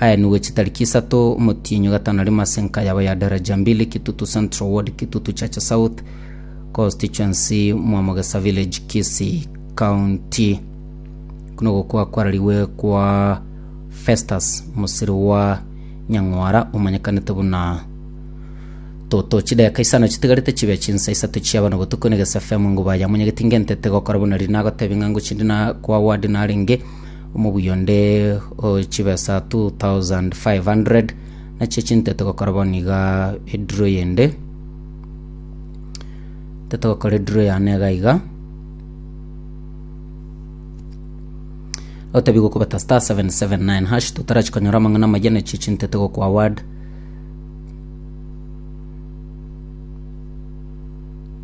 Aenigwe chitariki isato, omotienyi gatano rimo ase enka yabo ya Daraja Mbili, Kitutu Central Ward, Kitutu Chacha South Constituency, Mwamogesa Village, Kisii County. Kuno gokwa kwararigwe kwa Festus Musiriwa Nyang'wara omanyekanete buna Toto. Chideka isano chitigarete chibe chinsa isato chia bano botuko Negesa FM enguba yamonyegetinge ntete gokora buna riri nagotebi ng'a ngochindi na kwa ward narenge Omobuya onde o chibesa 2500 nachio chintete gokora bono iga ediro yende tete gokora ediro yane iga iga otabigwe okobata star 779 hash totarachi konyora amang'ana amaya nachio chintete gokwa award